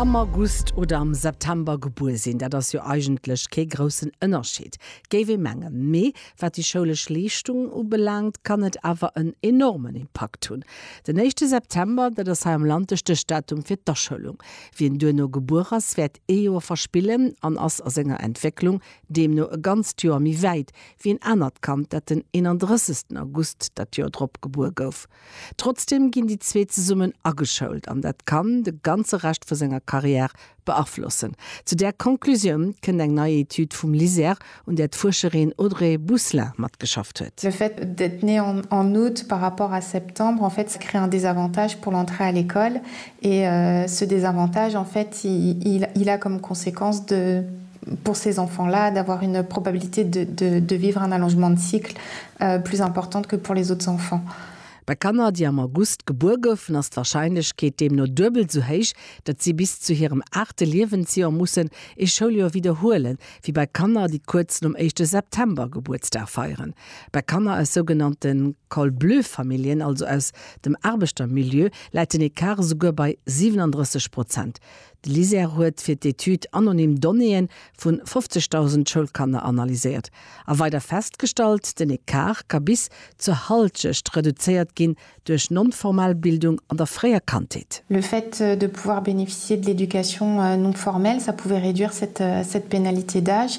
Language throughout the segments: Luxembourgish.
Am August oder am September gebuer sinn, dat ass jo eigentlech kee groussen Ënnerscheed, géif ee mengen. Mee wat déi schoulesch Leeschtung ubelaangt, kann et awer en enormen Impakt hunn. Den éischte September, dat ass hei am Land de Stéchdatum fir d'Aschoulung. Wien duerno gebuer ass, wäert ee Joer verspillen an ass a senger Entwécklung deemno e ganzt Joer méi wäit wéi en anert Kand, dat den 31. August dat Joer drop gebuer gouf. Trotzdem ginn déi zwee zesummen ageschoult an dat kann de ganze Rescht vu senger Carrière beaflossen. Zu där Conclusioun kënnt eng nei Etüd vum LISER, un där d'Fuerscherin Audrey Bousselin matgeschafft huet. Le fait d'être né en août par rapport à septembre, en fait, ça crée un désavantage pour l'entrée à l'école Et ce désavantage en fait il a comme conséquence de pour ces enfants-là d'avoir une probabilité de vivre un allongement de cycle plus importante que pour les autres enfants. Bei Kanner, déi am August gebuer goufen, ass d'Warscheinlechkeet deemno duebel esou héich, datt si bis zu hirem aachte Liewensjoer mussen ee Schouljoer widderhuelen, wéi bei Kanner, déi kuerz nom éischte September Gebuertsdag feieren. Bei Kanner aus sougenannte Col-bleu-Familljen, also aus. Dem Aarbechtermilieu läit den Ecart esouguer bei 37 Prozent. De LISER huet fir d'Etüd anonym Donnéeë vu 50.000 Schoulkanner analyséiert a weider festgestallt, den Ecart ka bis zur Halschecht reduzéiert ginn duerch non-formal Bildung an der fréier Kandheet. Le fait de pouvoir bénéficier de l'éducation non-formelle, ça pouvait réduire cette pénalité d'âge.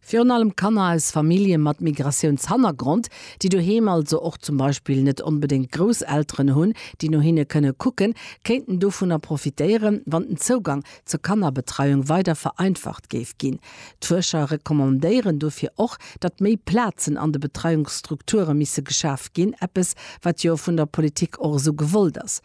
Virun allem Kanner aus Famillje mat Migratiounshannergrond, déi doheem also och zum Beispill net onbedéngt Grousselteren hunn, déi no hinne kënne kucken, kéinten dovunner profitéieren, wann den Zougang zur Kannerbetreiung weider vereinfacht géif ginn. D'Fuerscher recommandéieren dofir och, datt méi Plazen an de Betreiungsstrukture misse geschaf ginn, eppes, wat jo vun der Politik och esou gewollt ass.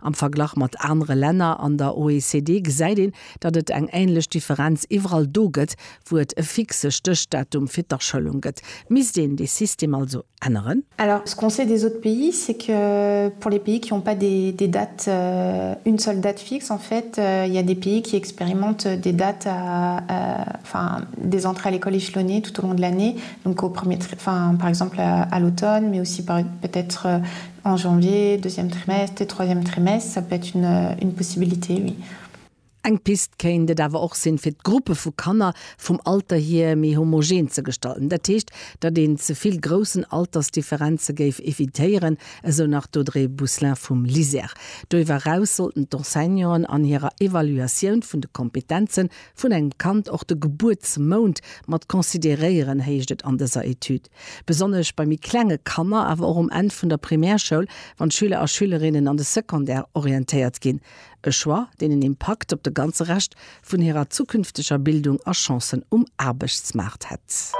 Am Verglach mat anere Länner an der OECD gesäit een, datt et eng änlech Differenz iwwerall do gëtt, wou et e fixe Stéchdatum fir d'Aschëllung gëtt. Misst een dee System also änneren? Alors, ce qu'on sait des autres pays, c'est que pour les pays qui ont pas des des dates, une seule date fixe, en fait, il y a des pays qui expérimentent des dates à, enfin, des entrées à l'école échelonnées tout au long de l'année, donc au premier, enfin, par exemple à l'automne, mais aussi peut-être En janvier, deuxième trimestre, troisième trimestre, ça peut être une possibilité, oui. Eng Pist kéint et awer och sinn, fir d'Gruppe vu Kanner vum Alter hier méi homogen ze gestalten. Dat heescht, datt een ze vill groussen Altersdifferenze géif evitéieren, esou nach d'Audrey Bousselin vum LISER. Doiwwer eraus sollten d'Enseignanten an hirer Evaluatioun vun de Kompetenze vun engem Kand och de Gebuertsmount mat consideréieren, heescht et an dëser Etüd. Besonnesch bei méi klenge Kanner, awer och um Enn vun der Primärschoul, wann d'Schüler a Schülerinnen an de Secondaire orientéiert ginn. E Choix, deen en Impakt op de ganze Rescht vun hirer zukünfteger Bildung a Chancen um Aarbechtsmaart hätt.